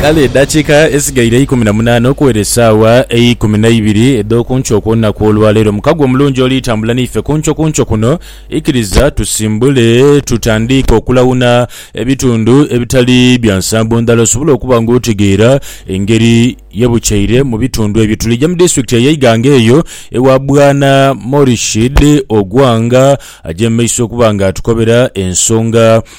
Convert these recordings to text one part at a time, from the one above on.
Kale edakiika edhisigaire eikumi na munaana okuwera esaawa eikumi na ibiri edh'oku nkyo okw'olunaku olwaleero, mukago omulungi oli tambula naife ku nkyo ku nkyo kuno. Ikiriza tusimbule tutandiike okulawuna ebitundu ebitali bya nsambo ndhala osobole okuba nga otegeera engeri ye bukyeire mu bitundu ebyo. Tulija mu disitulikiti eye Iganga eyo ewa Bwana Morishid Ogwang aja mu maiso okuba nga atukobera ensonga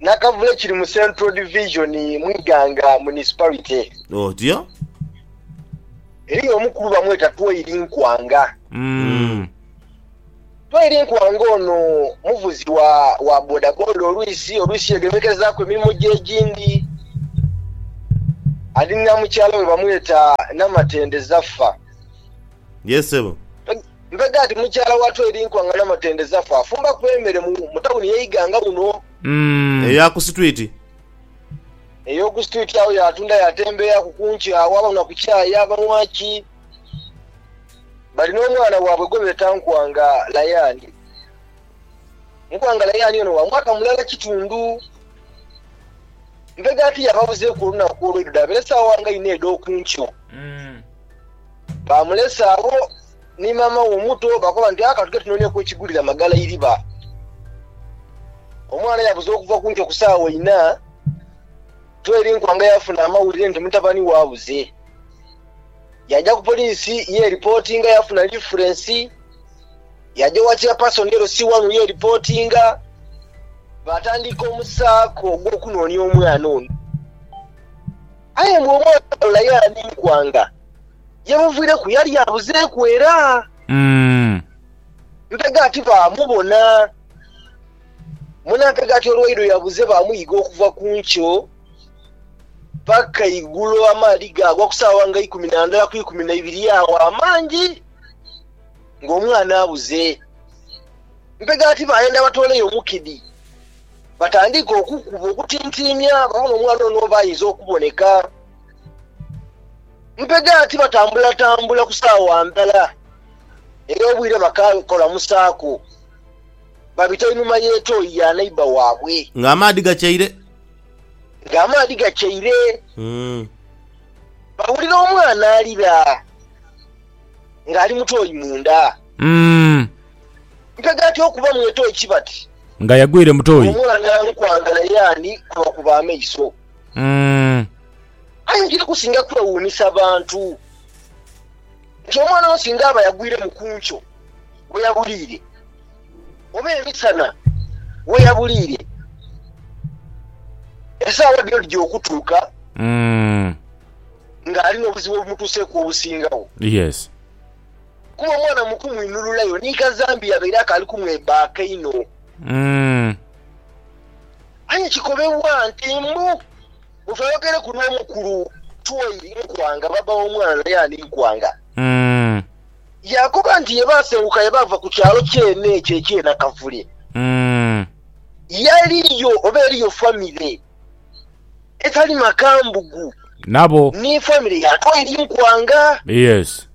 Nakavule kiri mu Central Division mu Iganga Municipality. Otyo. Eriyo omukulu bamweta Twairi Nkwanga. Mm. Twairi Nkwanga ono muvuzi wa wa bodaboda olwisi olwisi yegemekezaaku emirimo gye egindi. Alina mukyala we bamweta Namatende Zaffa. Yes, ssebo. Mpega ati, Mukyala watu eri nkuangana matende zafe afumba ku emere mu mu tawuni ye ighanga wuno. Umm. Eya ku situiti. Ey'oku situiti agho yaatunda yaatembeeaku ku nkyo agho abanhwa ku chai abanhwa ki. Bali n'omwana waabwe gwe beeta Nkwanga Layani. Nkwanga Layani ono wa mwaka mulala kitundu. Mpega ati yababuzeeku olunaku olw'eidho dhaabere saawa nga inha edh'oku nkyo. Umm. Baamulesa agho ni maama we omuto, baakoba nti, Aka tughe tunoone ku ekigulira magala eiriba. Omwana yabuza okuva ku nkyo ku saagho inha, Tweri Nkwanga yaafuna amawulire nti mutabani we abuze. Yaaja ku poliisi yeeripootinga, yaafuna lifulensi. Yaaja owa Chairperson LC wanu yeeripootinga. Baatandika omusaako ogw'okunoonia omwana ono. Aye mwe omwagala ye an'enkwanga ye muvireku yali abuzeeku era. Ntega ati baamubona. Mwena ntega ati olwaidho yabuze baamuyiga okuva ku nkyo paka igulo amaadhi gaagwa ku saawa nga ikumi na ndala ku ikumi na ibiri agho amangi ng'omwana abuze. Ntega ati baayenda batooleyo omukidi. Batandiike okukuba okutintiimya bona omwana ono oba ayinza okuboneka. Mpega ti batambulatambula ku saawa ndhala era obwire bakakolamusaaku, babita einhuma y'etoyi ya neighbour waabwe. Ng'amaadhi gakyaire. Ng'amaadhi gakyaire. Bawulira omwana alira ng'ali mu toyi munda. Mpega ti okubamu etoyi ki bati. Nga yagwire mu toyi. Wumula nali kwagala ye ani kubakuba amaiso. Aye nkiri kusinga kwewuunisa bantu nti omwana ono singa aba yagwiremu ku nkyo we yabuliire oba emisana we yabuliire, esaawa dhino dhija okutuuka ng'ali n'obuzibu obumutuuseeku obusingagho. kuba omwana mu kumwinhululayo ni kazambi yabaire akaali kumwebbaaka inho. Aye kikobebwa nti mbu omuntu ayogereku n'omukulu Twoiri Nkwanga, bbaabba w'omwana yaani Nkwanga, yaakoba nti ye baasenguka ye baava ku kyalo kyene ekyo eky'e Nakavule, yaliyo oba eriyo famire etali makambugu nabo ni famire yaato eri mu kwanga. Yes.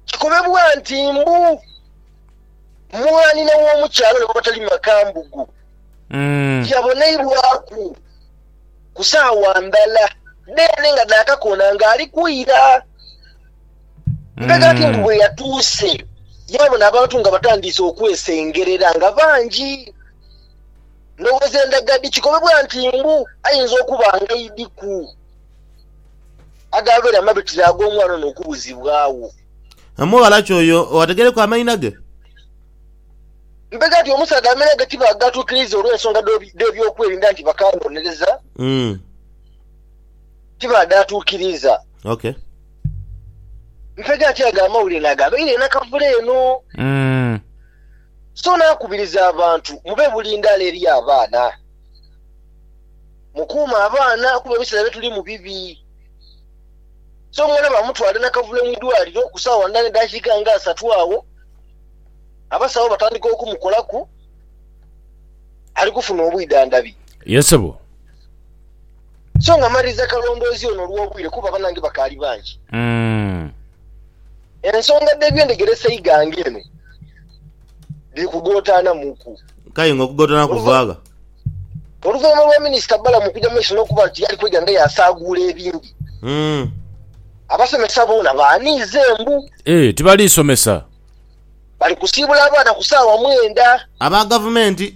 Kikobebwa nti mbu mwanhina w'omukyala ono abatali makambugu yaboneibwaku ku saawa ndhala dheene nga dha kakoona ng'ali kwira. Mbega ki mbu bwe yatuuse yaabona abantu nga batandiise okwesengerera nga bangi. Ndhowoza endaga dhi kikobebwa nti mbu ayinza okuba nga idi ku agaabeera amabitire ag'omwana ono okubuzibwagho. Omughala ki oyo owategereku amaina ge? Mpega nti omusaadha amaina ge tibaagatukiriza olw'ensonga dh'ebyokwerinda nti bakanonereza tibaadhatukiriza. Ok. Mpega nti ago amawulire naagabaire nakavule eno. So naakubiriza abantu mube bulindaala eri abaana. Mukuume abaana kuba ebiseera bye tulimu bibi. So omwana baamutwala e Nakavule mu idwaliro ku saawa ndha n'edhakiika nga asatu agho, abasawo batandika okumukolaku, ali kufuna obwidhandhabi. Ye sebo. So nga mmaliriza kalondoozi ono olw'obwire kuba banange bakaali bangi. Ensonga dh'ebyendegera eseighanga eno dhiri kugootaanamuku. K'aye nga okugootaana kuva gha? Oluvainhuma lwa Minisita Balaam okuja mu maiso n'okuba nti yali kwega nga y'asaaguula ebindi, abasomesa boona baaniize mbu. Ee, tibali somesa. Bali kusiibula abaana ku saawa mwenda. Aba Gavumenti.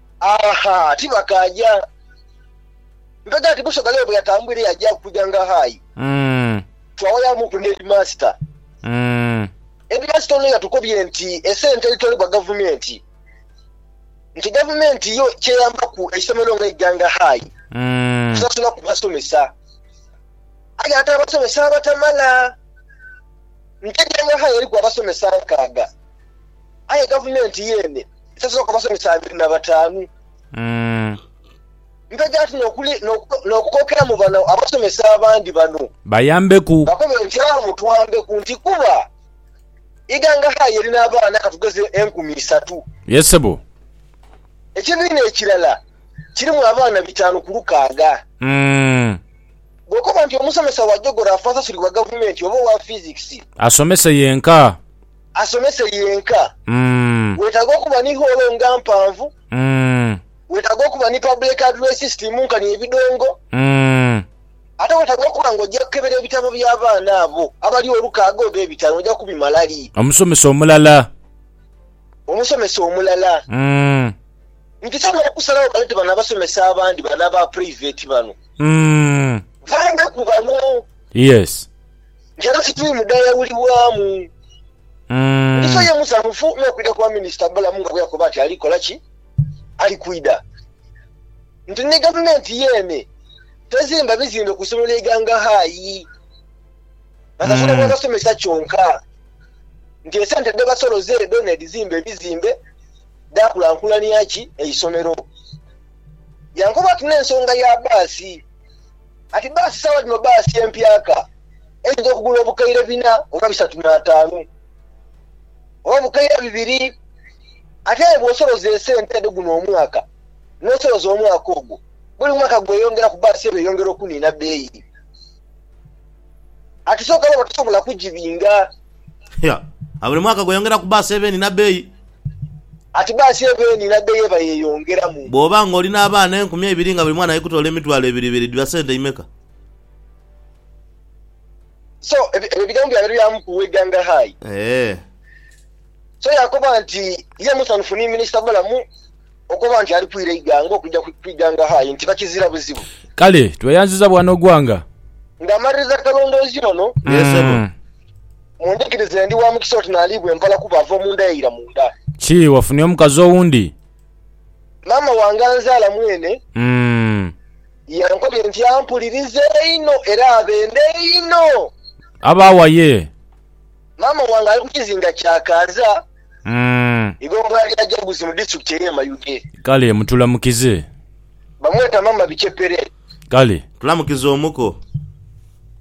Aha, tibakaaja. Nkaga nti Busoga leo bweyatambwire yaja kuja nga hayi. Twawayamuku ne Headmaster. Headmaster ono yatukobye nti esente edhitolebwa gavumenti, nti gavumenti yo kyeyambaku eisomero nga eija nga hayi kusasulaku basomesa. Aye ate abasomesa abatamala. Nti eija nga hayi eriku abasomesa nkaaga. aye gavumenti yeene esasulwa ku abasomesa abiri na bataanu. Mpege ati n'okukookeramu bano abasomesa abandi bano bakobe nti awo mutwambeku nti kuba Iganga High erina abaana katugeze enkumi isatu. Ekibiina ekirala kirimu abaana bitaanu ku lukaaga. Bw'okoba nti omusomesa wa jogoraafi asasulibwa gavumenti oba owa fizikisi. asomese yenka. Wetaaga okuba ni hoolo nga mpanvu. Wetaaga okuba ni public address system nkani ebidongo. Ate wetaaga okuba nga oja kukebera ebitabo bya baana abo abali olukaaga oba ebitaanu oja kubimala li? Omusomesa omulala. Omusomesa omulala. Nkisobola okusalagho baleete bano abasomesa abandi bano aba private bano. Vanga ku bano. Yes. Njala situimu dhayawulibwamu. Mugisha ye musanhufu n'okwidha kwa Minisita Balamu nga bweyakoba nti ali kola ki? Ali kwidha. Nti ni Gavumenti yeene tezimba bizimbe ku isomero lya Iganga High basasula bwa basomesa kyonka nti esente dhebasoloza edho n'edhizimba ebizimbe dhaakulankulania ki? Eisomero. Yankoba ati n'ensonga ya baasi. Ati bbaasi sawa dhino bbaasi empyaka eyinza okugula obukaire bina oba bisatu n'ataanu oba obukaire bibiri ate aye bw'osoloza esente edho guno omwaka n'osoloza omwaka ogwo buli mwaka gweyongeraku bbaasi eno eyongera okuniina bbeeyi ati sooka baba tosobola kugibinga. Buli mwaka gweyongeraku bbaasi eba eniina bbeeyi. Ati bbaasi eva eno n'adda y'eva yeeyongeramu. Bw'oba ng'oli n'abaana enkumi eibiri nga buli mwana ali kutoola emitwalo ebiri ebiri dhiba sente imeka? So, ebyo ebigambo byabere bya mukulu w'eighanga hayi. So yaakoba nti ye musanhufu ni Minisita Balamu. Okoba nti ali kwira eighanga okuja ku ighanga hayi nti bakizira buzibu. Kale tweyanziza bwana Ogwanga. Nga maliriza akalondoozi lono. Yee sebo. Mundhikirize ndi wa mukisa oti naliibwa empala kuba ava omunda yaira munda. Ki, wafunye omukazi owundi? Maama wange anzaala mwene. Umm. Yankobye nti ampuliriza einho era abenda einho. Aba wa yee? Maama wange ali ku kizinga kya Kaaza. Umm. Igho mbu ali ajaguzi mu district eye Mayuge. Kale mutulamukize. Bamweta mama bichepere. Kale. Tulamukize omuko.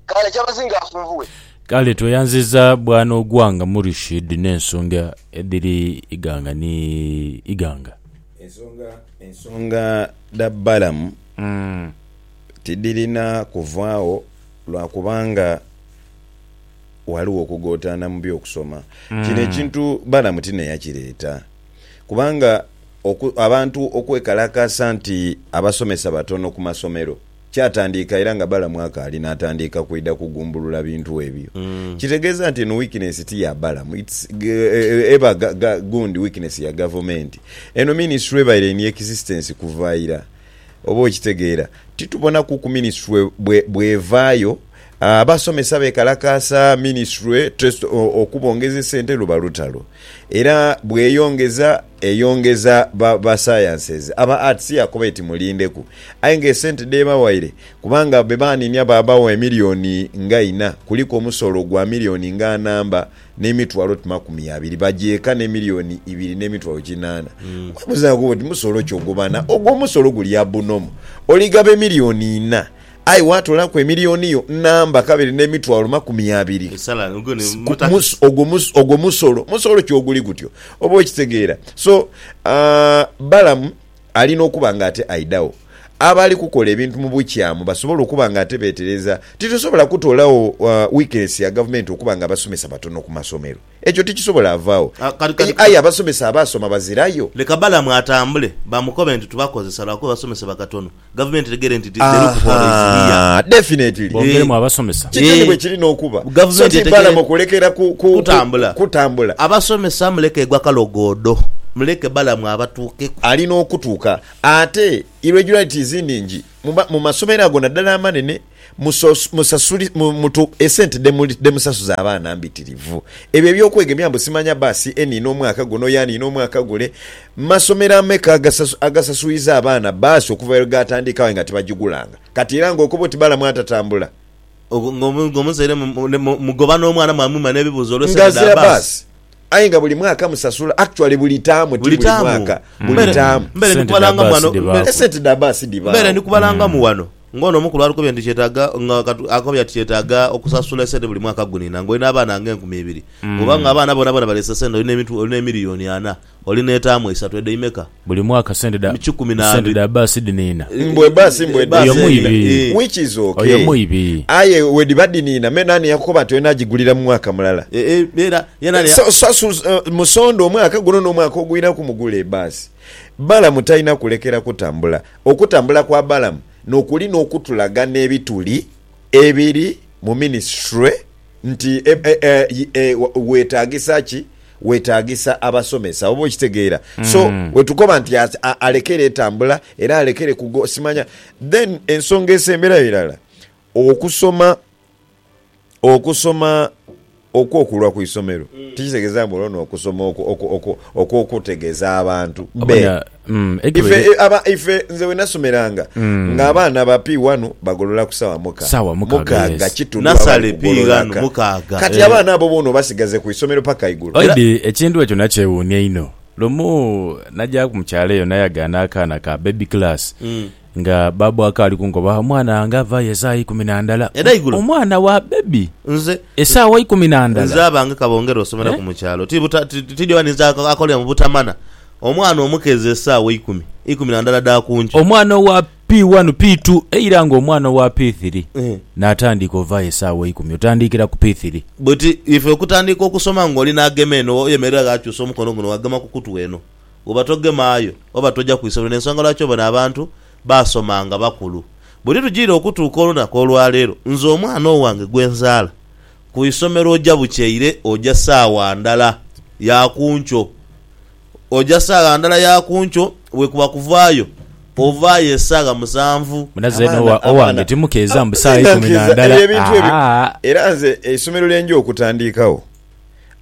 Kale kyabazinga afunvughe. Kale tweyanziza bwana Ogwanga Murishid ne nsonga edhiri Iganga ni Iganga. Ensonga ensonga dha Balaam tidhirina kuvaagho lwa kubanga. Ghaligho okugootaana mu by'okusoma. Kino ekintu Balamu ti naye yakireeta. Kubanga oku, abantu okwekalakaasa nti abasomesa batono ku masomero, kyatandiika era nga Balamu akaali n'atandiika kwidha kugumbulula bintu ebyo. Kitegeeza nti eno weakness ti ya Balamu, it's, eba ga, ga, gundi weakness ya gavumenti. Eno minisitule ebaire in existence kuva ira. Oba okitegeera? Titubonaku ku minisitule bwe, bw'evaayo. Abasomesa bekalakaasa minisitule okubongeza esente luba lutalo era bweyongeza eyongeza ba sciences, aba arts yakoba eti mulindeku aye nga esente dhebawaire kubanga bebaninia babawa emiliyoni nga ina kuliku omusolo gwa miliyoni nga namba nemitwalo oti makumi abiri bagyeka nemiliyoni ibiri nemitwalo kinana webuzaku oti musolo ki ogwo bana ogwo omusolo guli abunomo oligaba emiliyoni ina Aye waatoolaku emilioni yo namba kabiri n'emitwalo makumi abiri. Esala ogwo ni Ku- mutakisi. mus- ogwo mus- ogwo musolo musolo ki oguli gutyo oba okitegeera so ah, balamu alina okuba nga ate aidagho abali kukola ebintu mu bukyamu basobole okuba nga ate betereza titusobola kutoolawo ah, weakness ya gavumenti okuba nga abasomesa batono ku masomero Ekyo tikisobola vaagho. Aye abasomesa abaasoma bazirayo. Leka Balamu atambule, bamukobe nti tubakozesa lwakuba basomesebwa katono. Gavumenti etegere nti the loophole is here. Ahaa, definitely. Bongeremu abasomesa. Kityo ni bwe kiri n'okuba. So ti Balamu kulekera kutambula. Abasomesa muleke gwa kalogoodo. Muleke Balamu abatuukeku. Ali n'okutuuka. Ate irregularities nhingi mu masomero ago naddala amanene. Musasule mutu esente dhemusasuza abaana mbitirivu. Ebyo ebyokwegemya mbu simanya baa si e niina omwaka guno oyo aniina omwaka gule. Masomero ameka agasasuiza abaana baasi okuva lwe gaatandika aye nga tibagigulanga? Kati era nga okoba oti balamu atatambula. Nga omuzaire mugoba n'omwana mwamwima n'ebibuuzo olw'esente dha baasi. Aye nga buli mwaka musasula. Actually buli taamu ti buli mwaka, buli taamu. Sente dha baasi dhibaaku. Esente dha baasi dhibaawo. Mbeere ndi kubalangamu ghano ng'ono omu ku lw'atukobye nti kyetaaga, nga akobye ati kyetaaga okusasula esente buli mwaka gunina ng'olina abaana ng'enkumi ibiri. Bw'oba ng'abaana boonaboona baleese sente, olina ebintu, olina emiliyoni ana, olina etaamu isatu, edho imeka? Buli mwaka sente dha, sente dha bbaasi dhiniina. Mbu ebbaasi mbu edhiniina. Oyo mwibi. Which is ok. Oyo mwibi. Aye bwedhiba dhiniina me naani yakukoba nti olina gigulira mu mwaka mulala? Musonda omwaka guno n'omwaka ogwiraku mugule ebbaasi. Balamu talina kulekera kutambula. Okutambula kwa Balamu nokuli n'okutulaga n'ebituli ebiri mu minisitule. Nti, e, e, weetaagisa ki? Weetaagisa abasomesa, oba okitegeera. So, we tukoba nti a, a, alekere etambula, era alekere kugo, simanya. Then, ensonga esemberayo irala, okusoma, okusoma okw'okulwa ku isomero, tikitegeeza mbu olwo n'okusoma okwo, okwo, okwo, okw'okutegeeza abantu be. Ife aba ife nze wenasomeranga nga abaana ba P wanu bagolola ku sawa muka Sawa mukaaga, mukaaga yes. kitundu baba Nasale bali pi kugolola ghanu ka. mukaaga, Kati eh. abaana abo bona obasigaze ku isomero paka igulo. Oidi ekintu ekyo nakyewuunia inho. Lumu najaku mu kyalo eyo nayagaana akaana ka baby class Nga babu akaali kunkoba, omwana wange avaayo esaawa eikumi na ndala. Edhaigulo. Omwana wa baby? Nze. Esaawa eikumi na ndala? Nze abange ka bongere osomeraku mu kyalo. Ti buta, ti dyowa ninze akolera mu butamana. Omwana omukeezi esaawa eikumi, eikumi na ndala dha ku nkyo. Omwana owa P1, P2, eira nga omwana owa P3 naatandiika ovaayo esaawa eikumi, otandiikira ku P3. Buti ife okutandiika okusoma ng'oli naagema eno, oyemerera ghaakyusa omukono guno ghagema ku kutu eno. Woba togemaayo oba toja ku isolero n'ensonga lwaki obona abantu baasoma nga bakulu. Bwe litujiira okutuuka olunaku olwaleero, nze omwana owange gwe nzaala ku isomero oja bukyeire oja saawa ndala ya ku nkyo. Oja saagha ndala ya ku nkyo, bwekuba kuvaayo ovaayo esaagha musanvu. Munaze Noah owange timukeeza mbu saawa ikumi na ndala ahaa. Era nze eisomero lye nja okutandiikagho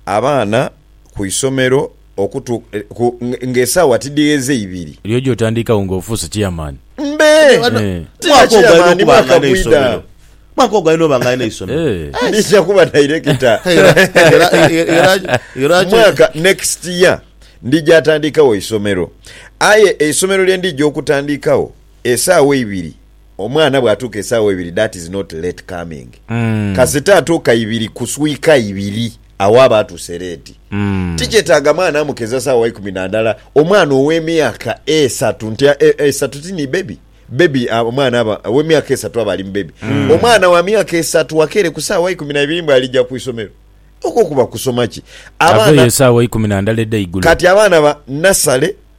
abaana ku isomero. okutu ku nga esaawa tidhigheze ibiri. Eriyo gy'otandiikagho nga ofuuse chairman? Mbe! Aye wano Eh. ti na Mwaka ogwo alina chairman, okuba nga mwaka alina bwidha. eisomero. Mwaka ogwo alina oba nga alina eisomero. Eh. Ndija kuba director. Era- era- era- era- era ki- Mwaka next year ndija atandikawo eisomero. Aye eisomero lye ndija okutandikawo esaawa eibiri Omwana bwatuuka esaawa eibiri that is not late coming. Kasita atuuka ibiri kuswika ibiri agho aba atuuse late. Tikyetaaga mwana amukeza saawa ikumi na ndala. Omwana ow'emyaka esatu nti esatu ti ni baby? Baby omwana aba ow'emyaka esatu aba ali mu baby. Omwana wa myaka esatu akeere ku saawa ikumi na ibiri mbu alija ku isomero. Okwo kuba kusoma ki? Abaana. Aveeyo esaawa ikumi na ndala edh'eigulo. Kati abaana ba nasale.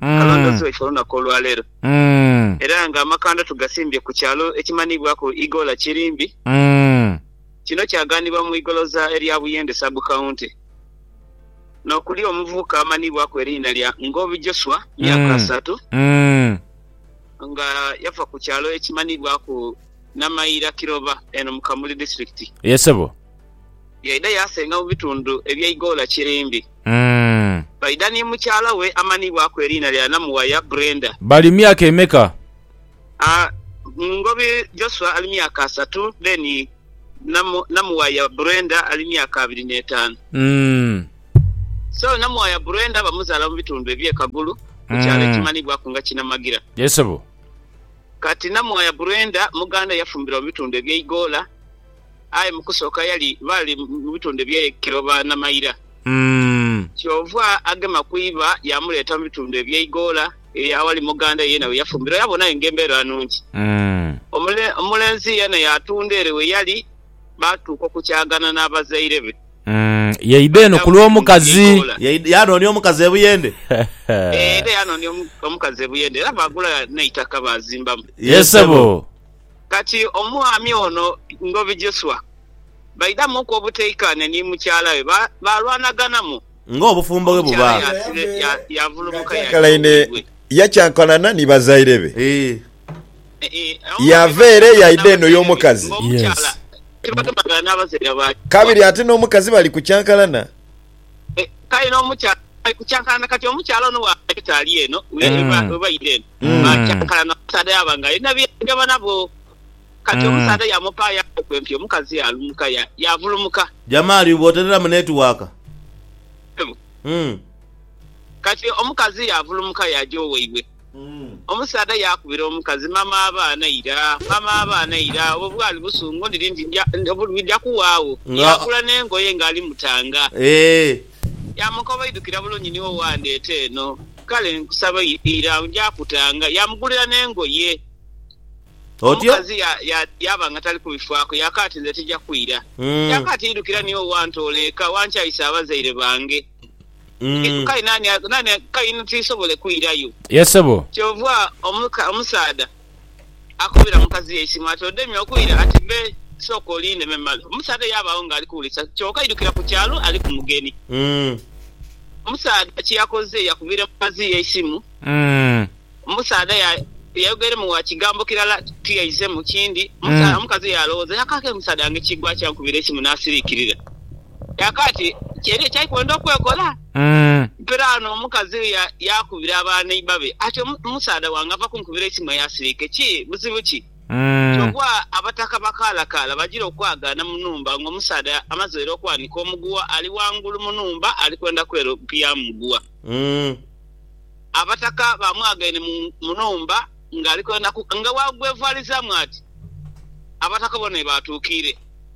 kalondooziibwa ife olunaku olwaleero era nga amakanda tugasimbye ku kyalo ekimanhiibwaku Igoola Kirimbi. Kino kyagaanibwa mu igoloza erya Buyende Sub County n'okuli omuvubuka amanhiibwaku eriina lya Ngobi Joshua myaka asatu nga yava ku kyalo ekimanhiibwaku Namaira Kiroba eno mu Kamuli Disitulikiti. Yaidha yaasenga mu bitundu eby'e Igoola Kirimbi. Umm. Baidha ni mukyala we amanhibwaku eriina lya Namuwaya Brenda. Bali myaka emeka? Aah, Ngobi Joshua ali myaka asatu then Namu, Namuwaya Brenda ali myaka abiri n'etaanu. Umm. So, Namuwaya Brenda bamuzaala mu bitundu eby'e Kagulu ku kyalo Umm. ekimanhibwaku nga Kinamagira. Yes sebo. Kati Namuwaya Brenda muganda yafumbirwa mu bitundu eby'e Igoola. aye mu kusooka yali baali mu bitundu eby'e Kiloba Namaira. Kyova agema ku iba yaamuleeta mu bitundu eby'e Igoola ere aghali muganda we yeena we yafumbirwa yaabona aye ng'embeera nnungi. Omulenzi yeena yaatunda ere we yali baatuuka okukyagana n'abazaire be. Yaidha eno ku lw'omukazi. Yaanoonia omukazi e Buyende. Yaidha yaanoonia omukazi e Buyende era baagula n'eitaka baazimbamu. Yee sebo. Kati omwami ono Ngobi Joshua baidamuku obuteikaanya ni mukyala we, baalwanaganamu. Ng'obufumbo bwe buba. Omukyala yaasira yaavulumuka yaja owaibwe. Yakyankana ni bazaire be. Yaava ere yaidha eno y'omukazi. Ng'omukyala tibagemagana n'abazaire ba kabiri. Kabiri ate n'omukazi bali kukyankalana. Kale n'omukyala bali kukyankalana. Kati omukyala ono bw'aja tali eno, we baidha eno. Mm. Akyakala n'omusaadha yaaba nga alina bye yeegema nabwo. Kati Mm. omusaadha yaamupaayo akookwe nti omukazi yaalumuka ya- yaavulumuka. Jamali bw'oterera mu netiwaaka. Mm. Kati omukazi yaavulumuka yaaja owaibwe. Omusaadha yaakubira omukazi, Mama abaana ira, mama abaana ira. Obwo bwali busungu ndiri nti ndya- obulwidha kuwaagho. Nga- Yaagula n'engoye ng'ali mutanga. Eeh. Yaamukoba, Oidhukira bulungi ni wo waandeeta eno. Kale nkusaba ira, nja kutanga. Yaamugulira n'engoye. Otyo. Omukazi yaaba nga tali kubifaaku, yaakaati, Nze tija kwira. Yaakaati, Idhukira ni wo waantoola eka, wankyaisa abazaire bange. Kale nani, kale nani, kale inho tiisobole kwirayo. Yee ssebo. Kyova omusaadha. akubira mukazi eisimu ati, Odemye okwira? Ati, Be, sooka olinde me male. Omusaadha yaabaawo ng'ali kuwulisa, kyoka aidukira ku kyalo ali ku mugeni. Omusaadha kye yakoze yakubira mukazi we eisimu. Omusaadha yayogeremu wa kigambo kirala tiyaizemu kindi. Omukazi yaalowooza, Yakaake omusaadha wange kigwa ki ankubira eisimu n'asiriikirira? Yakati, Kyeri ekya ikwenda okwekola? Mpiraano omukazi ya, yaakubira aba neiba be ati, Omu, omusaadha wange ava kunkubira eisimu eya siliike. Ki, buzibu ki? Kyova abataka bakaalakaala bajira okwagaana mu nhumba ng'omusaadha amazeire okwanika omuguwa ali ghangulu mu nhumba ali kwenda kweropiyamu muguwa. Abataka baamwagaine mu, mu nhumba ng'ali kwenda ku, nga wa gwevwalizaamu ati, Abataka bona webaatuukiire.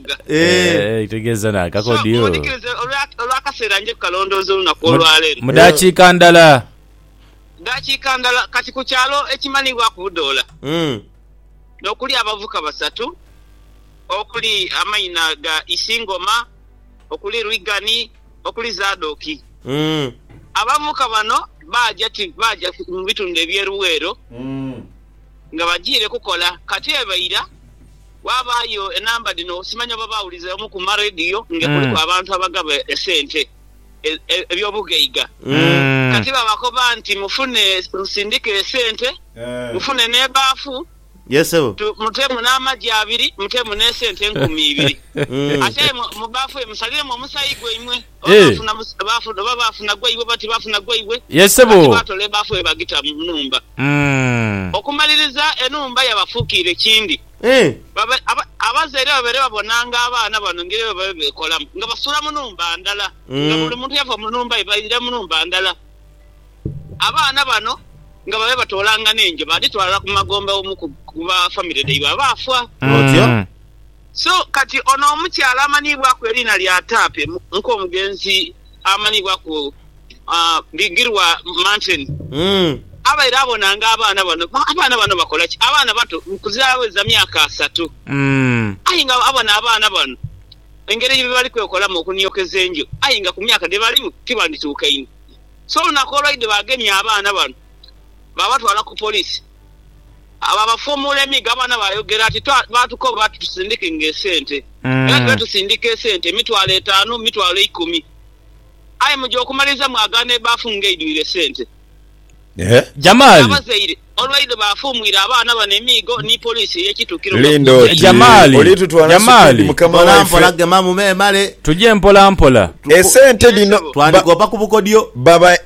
Lubuga. Eeh kitegeeza na kakodi So, ooh. mudikirize olwa, olw'akaseera nje kukalondooza olunaku Mu, olwa leero. mu daakiika ndala. Daakiika ndala. Kati ku kyalo ekimanibwaku Budoola, Mm. nokuli abavuka basatu okuli amaina ga Isingoma, okuli Rwigani, okuli Zadoki. Mm. Abavuka bano baaja ti, baaja mu bitundu eby'e Luweero nga bajiire kukola. Kati eba ira. Ghabaayo enamba dhino simanya oba baawuliza omu ku marediyo nga kuliku abantu abagaba esente eby'obughaiga. Kati babakoba nti, Mufune, musindike esente, mufune n'ebaafu, muteemu n'amagi abiri, muteemu n'esente enkumi ibiri. Aye mu baafu eyo musaliremu omusaayi gwaimwe. Oba Eh. baafuna mu, baafuna, oba baafuna gwa iwe, oba tibaafuna gwa iwe, Ye ssebo. kati baatola ebaafu ye baagita mu nhumba. Mm. Okumaliriza, enhumba yabafuukiira ekindi. Eh. Babe, aba, abazaire babaire babonanga abaana bano engeri bwe babaire beekolamu, nga basuula mu nhumba ndala, nga Mm. buli muntu yava mu nhumba ye baidha mu nhumba ndala. Abaana bano nga babaire batoolanga n'enje baadhitwala ku magombe omu ku, ku ba famire dhaibwe abaafa. Otyo. Mm. So kati ono omukyala amanhiibwaku eriina lya Tape nko omugenzi amanhiibwaku Bigirwa Martin abaire abonanga abaana bano. Abaana bano bakola ki? Abaana bato kuzira aweza myaka asatu aye nga abona abaana bano engeri gyebali kwekolamu okuniokeza enju aye nga ku myaka dhebalimu tibandituukaine. So olunaku olwaidha bagemye abaana bano babatwala ku police. Abo abafuumuula emigabane baayogera ati, Baatukoba ati tusindike ng'esente. Era tube tusindika esente, emitwalo etaanu, emitwalo eikumi. Aye mu gy'okumaliriza mwagaana ebaafu ng'eidhwire esente. N'abazaire olw'eidho baafuumuira abaana bano emiigo ni poliisi ey'ekituukiro nga kuzeyi. Jamali! Tuje mpolampola. Esente dhino baba.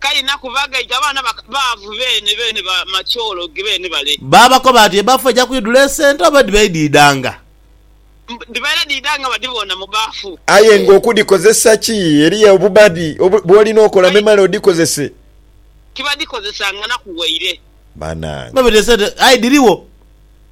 Kaina ku bagaita abaana baavu beene beene ba macoologe beene bale. Baabakoba ati, Ebbafu eja kwidhula esente oba edhiba idhiidhanga? Dhibaire dhiidhanga badhiboona mu bbafu. Aye nga okudhikozesa ki? Eriyo obubadi bw'olina okola memale odhikozese? Tibadhikozesanga na ku waire. Banange. Babaita esente aye dhirigho.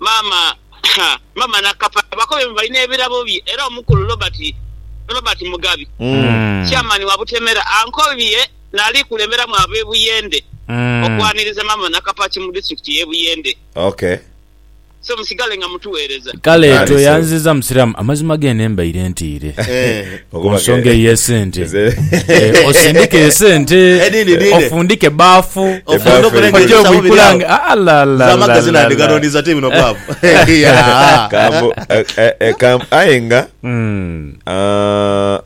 Maama Maama Nakapa bakobe mbu balina ebirabo bye era omukulu Robert Robert Mugabi Chairman wa Butemera ankobye nali kulemberamu abe Buyende okwaniriza Maama Nakapa ki mu district ye Buyende. Okay. So musigale nga mutuwereza. Kale tweyanziza musiramu amazima gene mbaire ntiire. Ku nsonga ey'esente, osindike esente, ofundike ebbafu, oje obwikulange. Aye nga hmm. ah,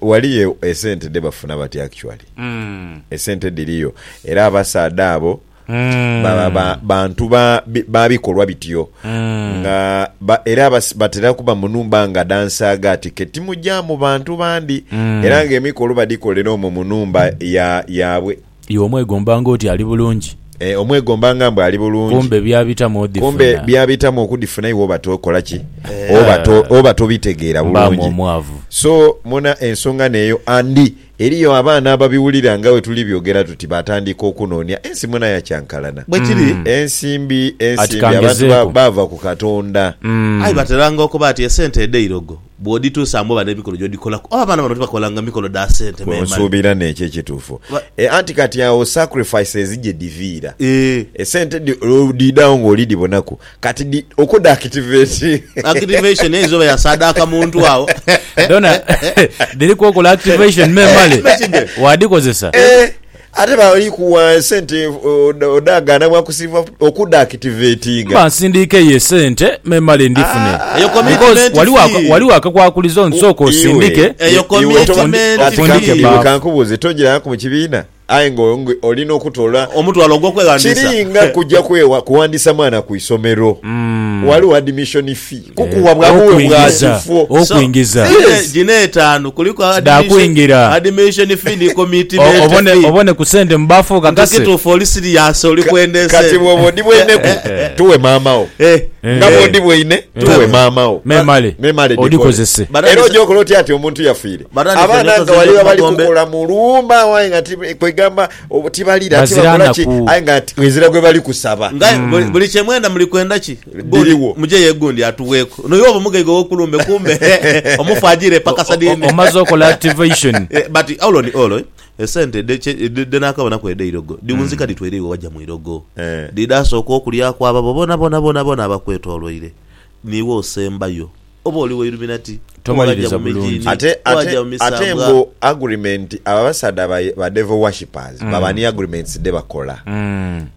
waliyo esente dhebafuna batya actually, hmm. esente dhiriyo era abasaadha abo ba, ba, ba, bantu ba, bi- ba bikolwa bityo nga ba, era bas- batera kuba mu numba nga dha nsaaga ati ke timugyamu bantu bandi era nga emikolo badikolera omwo mu numba ya, yaabwe Iwe omwegomba ng'oti ali bulungi, Eh, omwegomba nga mbu ali bulungi kumbe byabitamu odhifuna. kumbe byabitamu okudifuna iwe oba tokola ki oba, to, oba tobitegeera Mbaamu bulungi omwavu. so muna ensonga neeyo andi Eriyo abaana ababiwulira nga bwe tuli byogera tuti baatandika okunoonia ensi mwona ya kyankalana. Bwe kiri. Ensimbi, Ati ensimbi, abantu ba, kangezeeku. baava ku Katonda. Aye bateranga okuba ati esente edho eirogo, bw'odhituusa mbu oba n'emikono gy'odhikolaku. Oba abaana bano tibakolanga mikono dha sente Kwe memale. nsuubira n'ekyo ekituufu. Ba- E, anti kati agho sacrifices gye dhiviira. Eeh. Esente dhi, olwo dhiidha agho ng'oli dhibonaku. Kati di okwo da activate. Activation ezo oba yasaadaaka muntu agho. Dhona dhiriku okola activation me male wadhikozesa. Eeh ate bali kuwa esente odhagaana bwa kusiiva oku da activatinga. Mba nsindiika eyo esente me male ndhifune. Eyo commitment fee. Waliwo akakwakulizo nti sooka osindike. Eyo commitment fee. Kati kankubuuze togirangaku mu kibiina? Aye nga oli n'okutoola. Omutwalo ogw'okweghandiisa. Kiri nga kuja kwewa kuwandiisa mwana ku isomero. Ghaligho admission fee. Kukuwa bwa buwe bwa kifo. Okuingiza. Gino etaanu kuliku admission fee ni commitment fee. Obone ku sente mu baafu okakase. Nti kituufu oli serious oli kwenda ensi eno. Kati bwooba odibweineku tuwe maama wo. Nga bwodibweine tuwe maama wo. Memale odikozese. Era oja okola otya ati omuntu yafiire. Abaana nga waliwo abali kukola mu lwuma aye nga kwegamba tibalira tibakola ki aye nga ezira gwe bali kusaba. Ngaye mm. buli kyemwenda muli kwenda ki biriwo muje yegundi atuweku no yobo mugaiga okulumbe kumbe omufu ajire paka sadini omaze okola activation eh, but all on all eh, esente denakabona ku edeirogo diwunzika mm. ditwere iwe waja mwirogo eh. didasooka okulyaku ababo bona bona bona bona abakwetolwaire niwe osembayo Oba oli wa Illuminati, Tomaliriza oghajja mu bulungi. mijiini, Ate ate oghajja mu ate misambwa. mbu agreement abo abasaadha ba ba devil worshippers baba ni agreements dhe bakola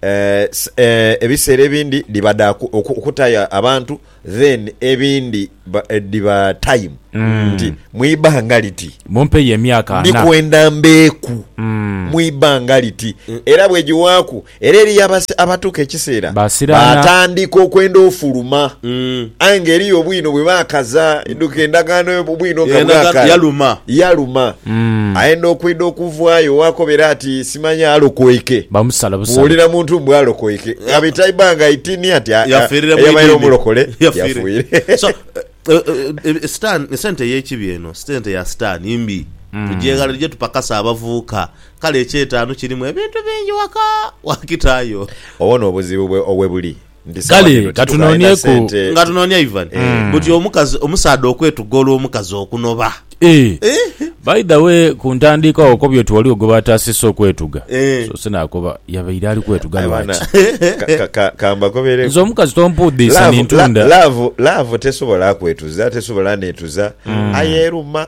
eh, s- eh, ebiseera ebindi dhiba dha ku- oku- okutayo abantu then ebindi ba- eh, dhiba time nti mwibanga liti Mumpeyo emyaka ana. ndikwenda mbeeku mwibanga liti era bwegiwaaku Era eriyo abasi abatuuka ekiseera Basiraana. baatandika okwenda ofuluma. Mm. Aye ng'eriyo obwino bwe baakaza duka endagaano yo, obwino nga Endagaano bwakala. yaluma. Yaluma. Mm. Ayenda okwidha okuvaayo waakobera ati simanya alokoike. Bamusala busala. Bw'owulira muntu mbu alokoike, ghabita ibanga itini ati aa, Yafiirire mu eyabaire idiini. omulokole Yafiire. yafuire. So, eh, eh, eh, sitaani- esente ey'ekibi eno, sente ya sitaani mbi. Tugyeghale dhije tupakase abavubuka Kale eky'etaanu kirimu ebintu bingi waka wakitaayo. Obwo n'obuzibu bwe owe buli nti sawa Kale, dhino titukaalina katunonieku. sente. Nga tunoonia Ivan buti omukazi omusaadha okwetuga olw'omukazi okunoba. Eeh. Eeh. By the way, ku ntandiika agho okobye oti ghaligho gwe baataasisa okwetuga. Eeh. Soose naakoba yabaire ali kwetuga Aye baana, lwaki? ka- ka- ka- kambakobereku. Nze omukazi tompuudhiisa Laavu- la- nintunda. laavu- laavu tesobola kwetuza, tesobola neetuza, aye eruma.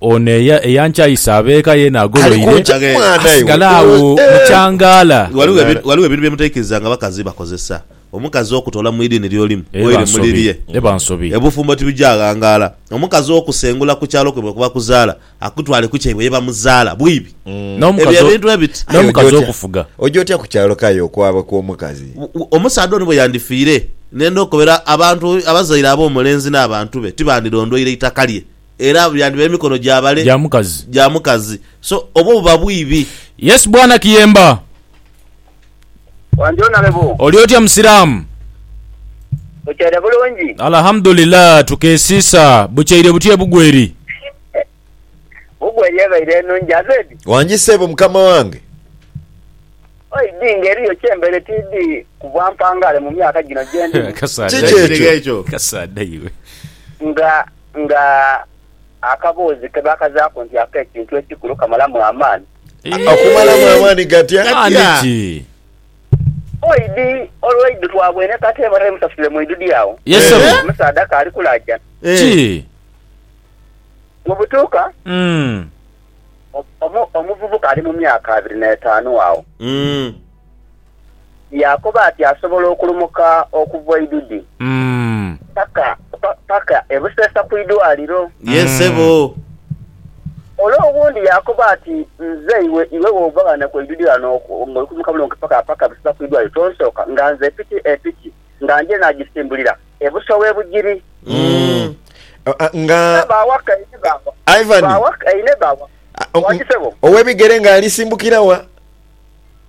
Ono eyankyayisa abeeka ye n'agoloire asigale agho mu kyangaala. Ghaligho ebintu bye mutaikirizanga bakazi bakozesa. Omukazi okutoola mu idiini ly'olimu oire mu lirye, obufumbo tibwija ghangaala. Omukazi okusengula ku kyalo kwaibwe kuba kuzaala akutwale ku kyaibwe ye bamuzaala bwibi. Ebyo ebintu ebiti. Aye oja otya, oja otya ku kyalo ko aye okwaba kw'omukazi? Omusaadha ono bwe yandifiire, ne ndhokobera abantu abazaire ab'omulenzi n'abantu be tibandidhondweire itaka lye. Era abo yandiba emikono gya bale. Gya mukazi. Gya mukazi. So, obwo buba bwibi. Yes bwana kiyemba. Wandyo nalebo. Oli otya musiramu? Bukyaire bulungi? Alahamudulillah tukesiisa. Bukyaire butya ebugweri? Bugweri ebaire enungi azedi. Wangi sebo mukama wange. Oi dii nga eriyo kyembere tiidi kubwa mpangare mumyaka gino gyendimu. Kiki ekyo? Kasaadha iwe. Nga. Nga akaboozi ke baakazaaku nti ak'ekintu ekikulu kamalamu amaani. Akumalamu amaani gati atya? Oidi olw'eidhu twabwene kata ebara emusasule mu idhudhi agho omusaadha kaali kulaajana. Mu butuuka, omuvubuka ali mu myaka abiri n'etaanu agho. yaakoba ati asobola okulumuka okuva Oidudi paka, pa, paka e Buseesa ku idwaaliro. Yee, ssebo. Ole owundi yaakoba ati, Nze, iwe, iwe bw'ova ghano ku Oidudi ghano ng'oli kulumuka bulungi paka, paka e Buseesa ku idwaaliro, tonsooka nga nze piki, e piki nga nje naagisimbulira e buso w'e Bugiri. Nga. Nga baawa kaine baawa. Ivan. Baawa kaine baawa. Waaki ssebo? Ow'ebigere ng'alisimbukira wa?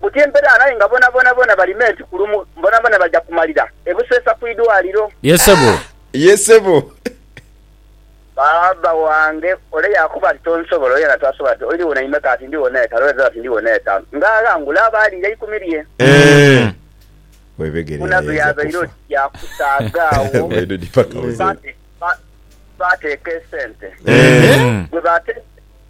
buti empedaa naye nga bona bona bona bali meet kulumu bona bona baja kumalira ebuseesa kwidwaliro. Ye sebo. Ye sebo. Baaba wange ole yakoba ati tonsobola ole yena tasobola ati oili wona imeka ati ndi wona etanu ole zero ati ndi wona etanu nga aghangula aba aliira ikumi lye. Eeh webegere Buna yayaaza byabaire kufa. oti bya kusaaga agho Bwedidi paka buzeeyi. baateeka esente Eeh. bwebateeka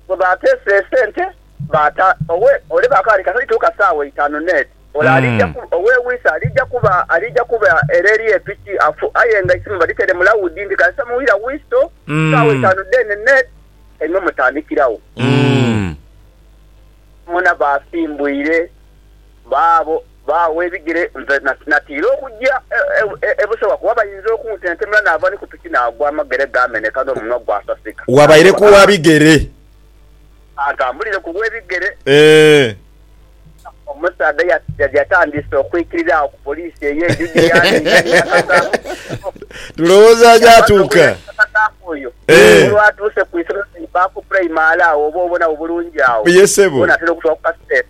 Bwe baateese esente, baata owe, ole baakawa nti, Katali tuuka saawa eitaanu n'eti, ole aliija ku, owe Wise aliija kuba, aliija kuba ere eri epiki, afu, aye nga eisimu badhitere mu lawudi nti, Kasita muwulira wisto, saawa eitaanu dheene n'eti, kaimwe mutandikiragho. Boona baasimbwire baabo. Baagho ebigere nze natiira okugya e Busoga kuba bayinza okuntentemula naava ni ku piki naagwa amagere gaameneka n'omunwa gwasasika. Wabaire ku wa bigere? Kantambulire ku lw'ebigere. Eeh. Omusaadha yatandise okwikirira agho ku poliisi eyo endhidhi yaaniinha ni Nakasaamu Bishop. Tulowooza ajaatuuka. Yabadha ogh'e Nakasaamu oyo. Eeh. Olwatuuse ku isomero lya Ibaku Primary agho oba obona wo bulungi agho. Ye ssebo. Gho natera okutwala ku kaseera.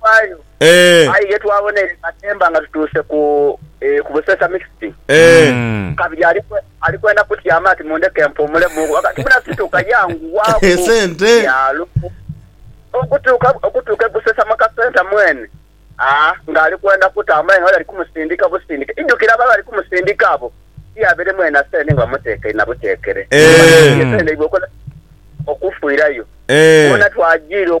Bwayo, aye ye twaboneire nga Temba nga tutuuse ku ku Busesa Mixed. Kabiri ali ali kwenda kutyama ati mundheke mpuumulemu ku ghagati muna situka yanguwaku byalo okutuuka okutuuka e Busesa mu kasenta mwene aa ng'ali kwenda kutambula aye nga bali bali kumusindika busindike. Idhukire ababa bali kumusindika abo ti abaire mwena sente nga bamuteekeire na buteekere. Esente dhaibwe okola okufiirayo. Wona twajiira.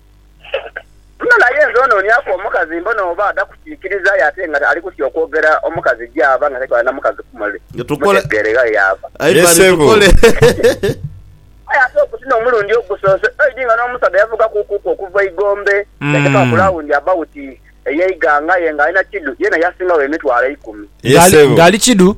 Muno naye nze onooniaku omukazi mbone oba ada kukiikiriza aye ate nga ali kutya okwogera omukazi gy'ava nga tatwala na mukazi kumuli mutegeere ghale y'ava. Ye ssebo. Aye ate oguti n'omulundi ogusoose oidhi nga n'omusaadha yavuga kuukuku okuva Igombe yateeka ku lawundi abawuti eye Iganga aye nga ali na Kidu yeena yasinga wo emitwalo eikumi. Ye ssebo. Nga ali Kidu.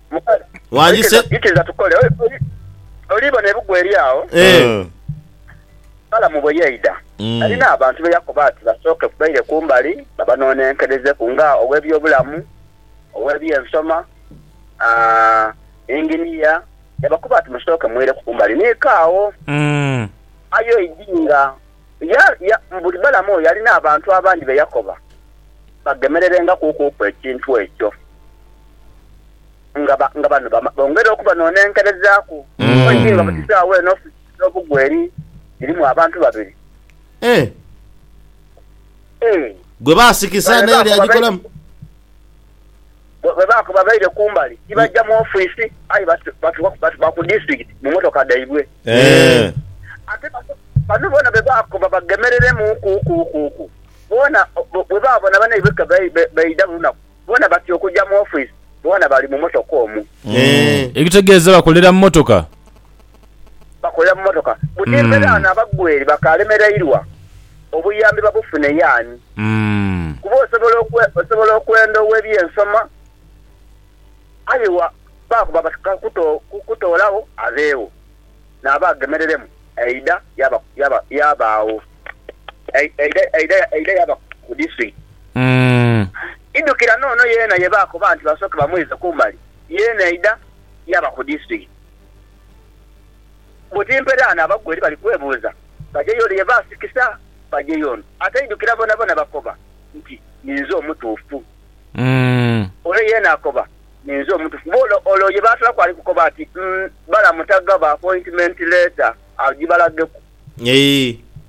Wandise. Ikiriza tukole. Oli bona ebugwa eri agho. Eh. Mm. Balamu bwe yaidha, Mm. yalina abantu be yakoba ati basooke ku baire ku mbali babanoonenkerezeku nga ow'ebyobulamu, ow'ebyensoma, aa, inginiya. Yabakoba ati, Musooke mwireku ku mbali. Ni kaagho. Mm. Aye oidhi nga Ya, ya, buli balamu oyo yalina abantu abandi be yakoba bagemererengaku okuuku ekintu ekyo, nga ba, nga bano bama, bongera okubanonenkerezaaku. Omanyi ki, nga buti saagho eno ofisi edh'obugwa eri dhirimu abantu babiri. Eh! Eh! Gwe baasikisa Bale n'ebyo bye bakoba be. yagikolamu. bwe baakoba baire ku mbali, ti baja mu ofiisi, aye batuuka ku disitulikiti mu mmotoka dhaibwe. Ate bano boona bwe baakoba bagemereremuukuukuukuuku, boona bwe baabona banaibwe ke baidha buli lunaku, boona batya okuja mu ofiisi, boona bali mu mmotoka omwo. Ekitegeeza bakolera mu mmotoka. bakolera mu motoka buti mpere ano abagweri bakalemerairwa obuyambi babufune yaani kuba osobola osobola okwenda owebyensoma aye wa bakuba bati kakuto kukutoolagho abeewo naaba agemereremu eidha yaba yaba yabaagho eidha eidha eidha yaba ku disitulikiti idhukira noono yeena ye baakoba nti basooke bamweize kumbali yeena eidha yaba ku disitulikiti. Bwe timperaano abagwa eri bali kwebuuza, bajeyo ole ye baasikisa, bajeyo ono ataidhukira boonaboona bakoba nti, Ninze omutuufu. Ole yeena akoba, Ninze omutuufu. Boola ole oyo ye baatolaku ali kukoba ati, Balamu tagaba appointment letter agibalageku.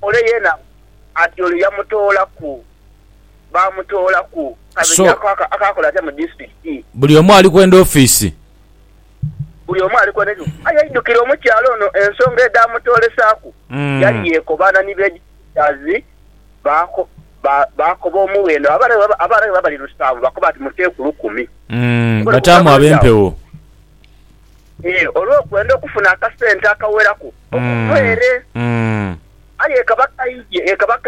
Ole yeena ati oyo yamutoolaku, baamutoolaku. Kabiri ako akaakola atya mu disitulikiti? Buli omu ali kwenda ofiisi. buli omu ali kwenda ekimu. Aye aidukire omukyala ono ensonga edhaamutoolesaaku, yali yeekobaana ni Baegiputazi. Baakoba omughe eno abarabe abali lusanvu, baakoba bati, Muteeku lukumi. Bataamu ab'empewo. Ee, olw'okwenda okufuna akasente akaweraku okuva ere. Aye ekaba kaidhye.